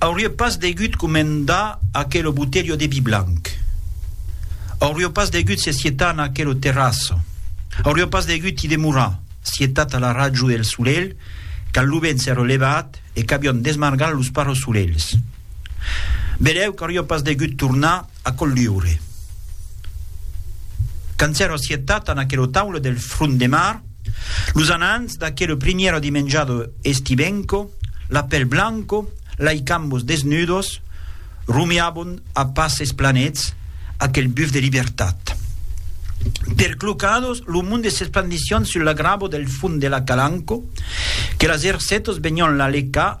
Aurie pas degut comendar aquelo botelho de vi blanc. Aurio pas degut se sietar en aquelo terrasso. Aurio pas degut i demorar, sietat a la rajo del solelh, quand lo vent s'èra levat e qu'avion desmargat los parrosolelhs. Belèu qu'aurio pas degut tornar a Colliure. Quand s'èra assetat en aquela taula del front de mar, los anants d'aquela primièra dimenjada estibenco, la pel blanco, lai cambos desnudos, rumiabon a passes planets aquel buf de libertat. Perclocados, lo monde s'esplandissian sul la grabo del fond de la Calanco, que las ercetos venian la lecar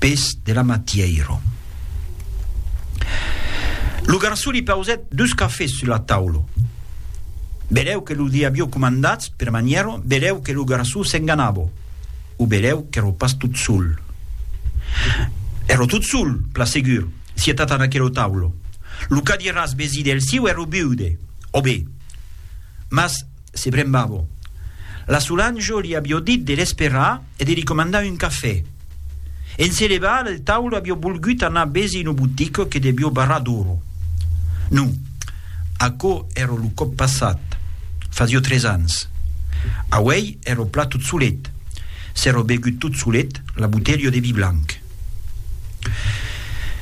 pes de la matièiro. Lo garçon li pausèt dus cafés sus la taula. Belèu que lo li avió comandats per manièro, belèu que lo garçon s'enganava, o belèu qu'èro pas tot sol. Èro tot sol, pla segur, sietat an aquela taula. Lo cadiràs vesí del siu èro viude, ò be, mas se brembava. La Solange li avió dit de l'esperar, e de li comandar un cafè. En se levar del taule avió bolgut anar besi no botic que devió barrar d'oro. Non, aquò èra lo còp passat, fasió tres ans. Auèi èra plat tot solet, s'èra begut tot solet la botelha de vi blanc.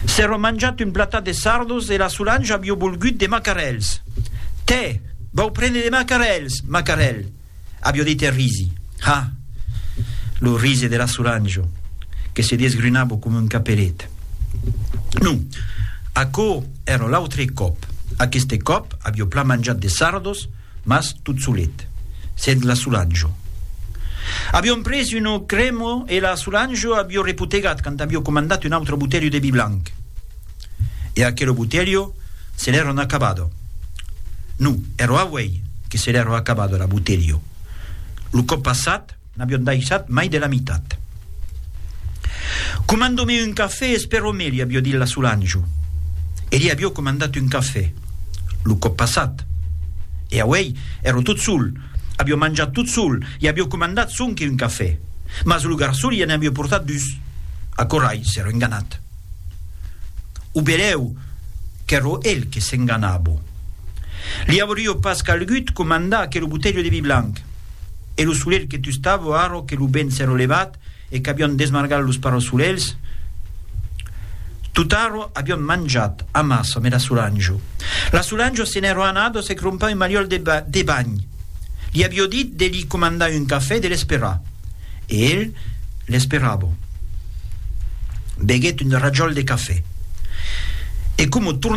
S'èra manjat un platat de sardos e la Solange avió bolgut de macarèls. Tè! Vau prene de macarèls, Macarèl! Avió dit e risi. Ha! Lo rise de la Solange, que se desgrunava coma un caperet. Non, aquò èra l'autre còp. Aqueste còp avió plan manjat de sardos, mas tot solet, sens la Solange. Avión pres un auc cremò e la Solange avió repotegat quand avió comandat un autre botelho de vi blanc. E aquelo botelho se l'èron acabado. No, ero auei que se l'èro acabado era botelho. Lo còp passat n'avión daissat mai de la mitat. Comando-me un cafè, espero me li avió dit la Solanjo. E li avió comandat un cafè, lo còp passat. E auei ero tot sol, avió manjat tot sol e avió comandat sonque un cafè. Mas lo garçon li en avió portat dus. Aquò rai s'èro enganat. O belèu qu'èro el que s'enganabo. Li aurio pas calgut comandar aquelo botelho de vi blanc. E lo solelh que tustavo arro que lo vent s'èro levat e qu'avion desmargat los parosolelhs? Tot'arro avion manjat amassa me la Solanjo. La Solanjo se n'èro anada se crompar un maliòl de banh. Li avio dit de li comandar un cafè e de l'esperar. e el l'esperava. Beguèt un rajòl de cafè e coma tornava,